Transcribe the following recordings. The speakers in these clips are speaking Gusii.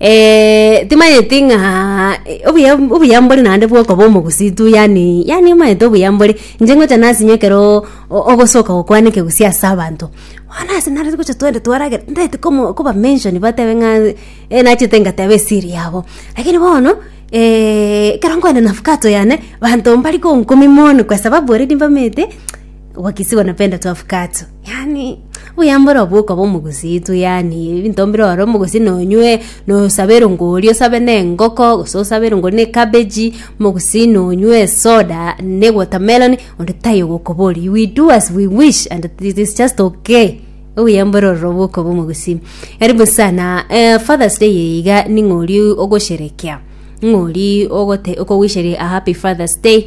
Eeeh timanyeti ng'aa obuya obuya mbore naende bwa okoba omogusii tu yaani yaani omanyete obuya mbore inche ngocha nasinye ekeroo o- ogosoka gokwana ekegusii ase abanto bono ase nare gocha twende twaragera ndagete komo koba mention batebe ng'a eh nachete ngateba esiri yabo lakini bono ekero nkoenda na avocado yane banto mbari konkumia mono kwa sababu already mbamanyete wakisi wanapenda tu avocado. Yaani, obuyambore obwo okoba omogusii tu yaani, ebinto mbire ore omogusii nonywe, nosabe erongori oria osabe na engoko, gose osabe erongori na ekabeji, omogusii nonywe esoda, ne watermelon, onde taiyo ogokoboria. We do as we wish and it is just okay. Obuyambore ororo obwo okoba omogusii. Karibu sana, eh, Father's Day eye iga ning'o oria ogosherekea? Ning'o oria ogote- okowisheria a happy Father's Day?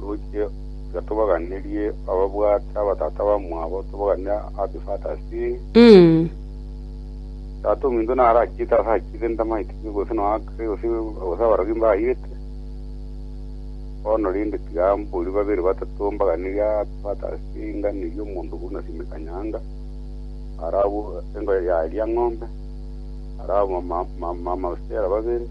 Roche tiga tobaganerie ababwate abatata bamwabo tobaganere abifatasie Mm. tata ominto naro achiete ase achiete ntamaete gose no akre gose gose abarogi mbairete bono rende tiga mborie babere batato mbaganerie abifatasie nganerie omonto buna sime kanyanga arabwo engo yaria ng'ombe arabwo ma- ma- ma- mabusera babere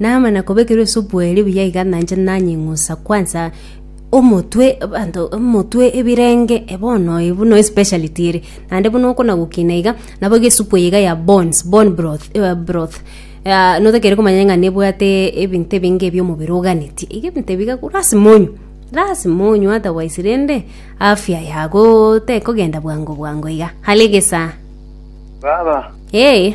Namana kobekerwa esubu eria buya iga nanche nanying'usa kwansa omotwe abanto omotwe ebirenge e bono e buna especiality ere naende buna okona gokina iga nabo iga esupu eye iga ya bones bone broth eh, broth Ah, notakere komanya ng'a nebwate ebinto ebinge ebio omobere oganetie iga ebinto ebi iga ko- lasima onywe lasima onywe otherwise rende afya yago tekogenda bwango bwango iga hare egesaa Baba, ee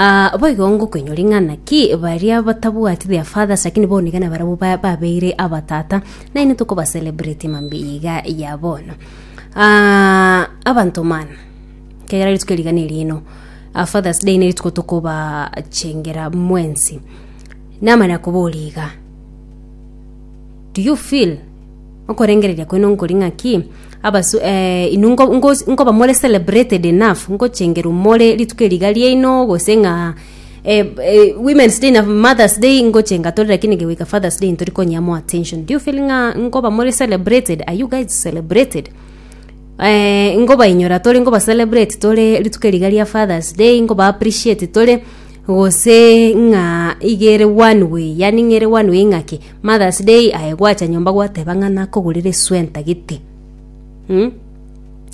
Aa, boigo ngokoinyori ng'a naki baria batabwati their fathers lakini bonigana barabwo ba- babeire abatata nainwe tokobacelebrate mambia iga ya bono Aa, abanto mana kegera rituko rigana erino aa, fathers day nerituko tokobachengera mwensi namanya koboria iga do you feel Okorengereria kwene nkori ng'aki? Abasu eh, inwe ngo- ngo- nkoba more celebrated enough ngochengerwa more rituko eri iga riaino gose ng'a eh, eh, women's day na mother's day ngochenga tore lakini gegoika father's day ntori konyea more attention do you feel ng'a nkoba more celebrated are you guys celebrated eh, ngobainyora tore nkoba celebrate tore rituko eri iga ria father's day nkoba appreciate tore gose ng'a iga ere one way yani ng'ere one way ng'aki Mother's day aye gwacha nyomba gwateba ng'a nakogorera esuwa entagete, mh,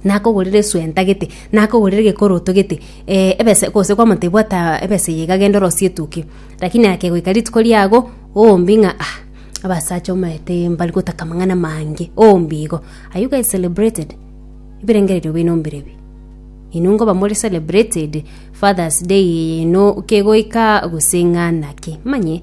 nakogorera esuwa entagete, nakogorera egekoro otogete, eh ebesa gose kwamotebia bwata ebesa eye iga genda orosie etukia. Lakini akegoika rituko riago, oombi ng'a ah abasacha omanyete mbari gotaka amang'ana amange, oombi igo. Are you guys celebrated? Ebirengererio bino mbire bii? Inwe nkoba more celebrated, Father's day eye ino kegoika gose ng'a naki? Manye.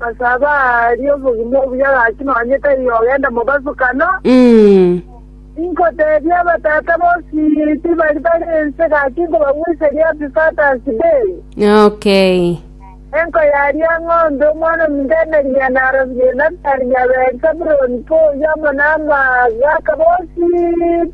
Ase abwo aaria obogima obuya gaki nonya tari ogenda mobasukano. Inkoteebia abatata bonsi tibari bare ense gaki nkobagweseria Epifata ase Beeri, Okay. enko yaria ng'ombe omwana ominto emeria narobi Yonatani nyabeeri Sabuloni pa oyio amo namagaaka bonsi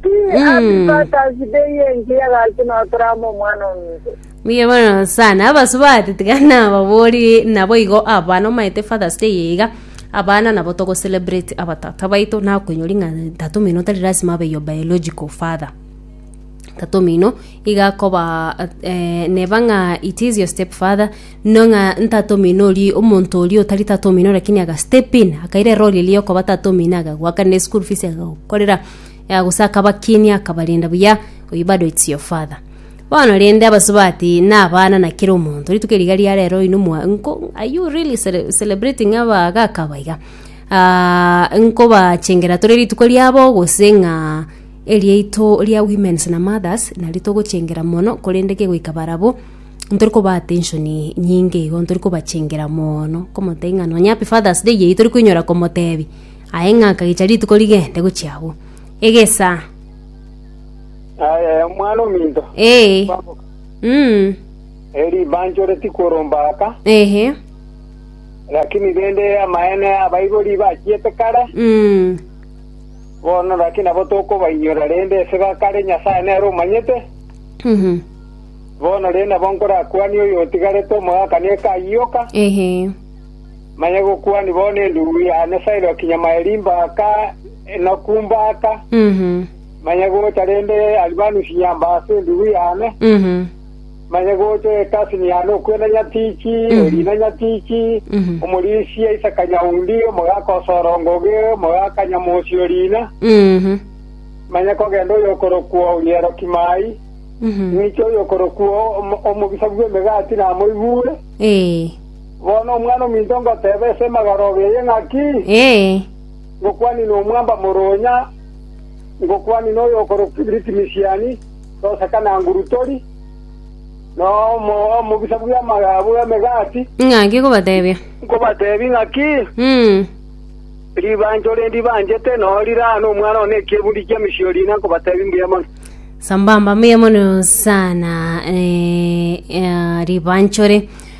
pi Epifata ase Beeri engiya gaki notorama omwana ominto. Mbuya mono sana abasubati tiga nababori nabo igo abana omaete fathers day eye iga abana nabo togo celebrate abatata baito nakoinyori ng'a tata omino tari lasima abe your biological father tata omino iga akoba eh, neba ng'a it is your step father no ng'a ntata omino oria omonto oria otari tata omino lakini aga step in akaira erori eria yokoba tata omino akagoakanera eschool fees akagokorera eh, gose akabakinia akabarenda buya oyio bado its your father. Bono rende abasubati nabana na kera omonto rituko riga ria rero oino mwa nko are you really cele- celebrating abagaka aba iga Ah, nkobachengera tore rituko riabo gose ng'a eriaito ria women's na mothers nario togochengera mono korende kegoika barabwo ntori kobaa attention nyinge igo ntori kobachengera moono komotebia ng'a nonya happy father's day eyio tori koinyora komotebia aye ng'a akagecha rituko rigende gochia agwo egesa Aye, omwana ominto. Ee. Kwamboka. Mm. Eri banchore tikoromba aka. Ehe. Lakini rende amaene abaibori bachiete kare. Mm. Bono lakini abo tokobainyora rende ese bakare Nyasaye nere omanyete. Mhm. Bono rende nabo nkorakwanie oyo otigarete omogakanie ekayioka. Ehe. Manya gokwana bono endubu ya Nyasae Roki Nyamaeri mbaka enoku mbaka, manya gocha rende Alibanusi ya mbaka endubu yane, manya gocha Ekasini yane okwena nyatichi, orina nyatichi, omorisi aise kanyaundi, omogaka osorongoge, omogaka nyamosi orina, manya kogenda oyokorokwa Orieroki Mai, ng'icha oyokorokwa Omobisa bw'Emegati namoigure. Bono omwana ominto ngoteeba ase emagarogo eye ng'aki? Ngokwanire nomwamba moronya, ngokwanire noyokorokwa Ritmisiani, toseka na nguru tori, na omobisa bw'emegati. Ng'aki kobateebia? Nkobateebie ng'aki, ribancho rinde ibanchete noo rire aa nomwana one nekieburi kia emisiori ina, nkobateebia mbuya mono. Sambamba, mbuya mono sana ribanchore.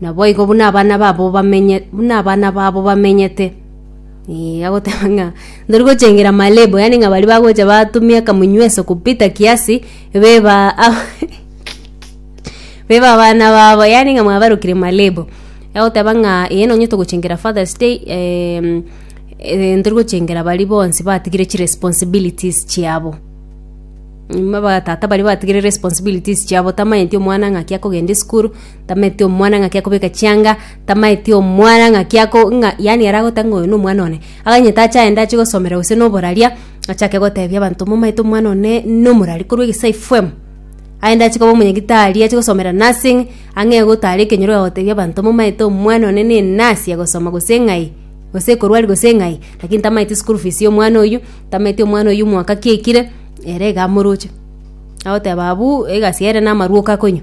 Naboigo buna abana babo bamenye- buna abana babo bamenyete. Ee, agoteba ng'a ntori gochengera malebo, yaani ng'a baria bagocha batumia akamunyweso kupita kiasi, beba beba abana babo, yaani ng'a mwabarokire malebo. Agoteba ng'a ee nonye togochengera Father's Day em, eh ntori gochengera baria bonsi batigire chiresponsibilities chiabo. Buna abatata baria batigire responsibilities chiabo, tamanyeti omwana ng'aki akogenda esukuru. Tamaeti omwana ng'aki akobeka chianga, tamaeti omwana ng'aki ako ng'a yaani ere agote ng'a oyo nomwana one. Aganye tache aende ache gosomera gose noboraria, achake gotebia abanto momaete omwana one nomorari korwa egesaai fwem. Aende ache koba omonyagitari ache gosomera nursing, ang'e gotara ekenyoro agagotebia abanto momaete omwana one ne enurse agosoma gose ng'ai, gose ekorwari gose ng'ai, lakini tamaeti school fees ya omwana oyio, tamaeti omwana oyio omwaka ki aikire, ere iga amoroche. Agoteba abuu egasi ere namarwa oka konywa.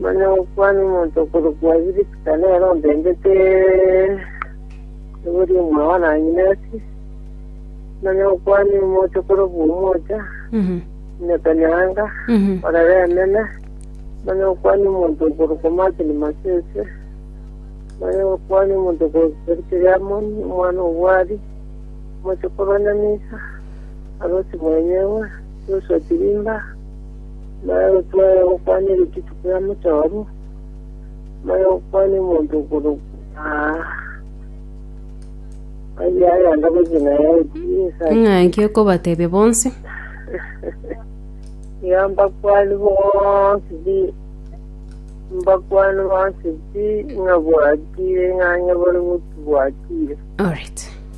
Nonya gokwana omonto okorokwa Birisika nere ontebete, Ebori omwae one anyineti. Nonya gokwana omocha okorokwa omocha, Mhm. Netanyanga, Mhm. orere enene. Nonya gokwana omonto okorokwa Martin Masese. Nonya gokwana omonto okorokwa Serikeri Amoni, omwana obwari, omocha okorwa Nyamisa, Arosi mwenyewe, Joshua Chirimba, Mare gotwara gokwana ere chituko ya mochoro, mare gokwana omonto okorokwa aye ayanda gochia naye ebiesa Ng'anki okobatebia bonsi. ya mbakwani bonsi bi mbakwani bonsi bi ng'abwatire ng'a nyobore gotubwatire Alright.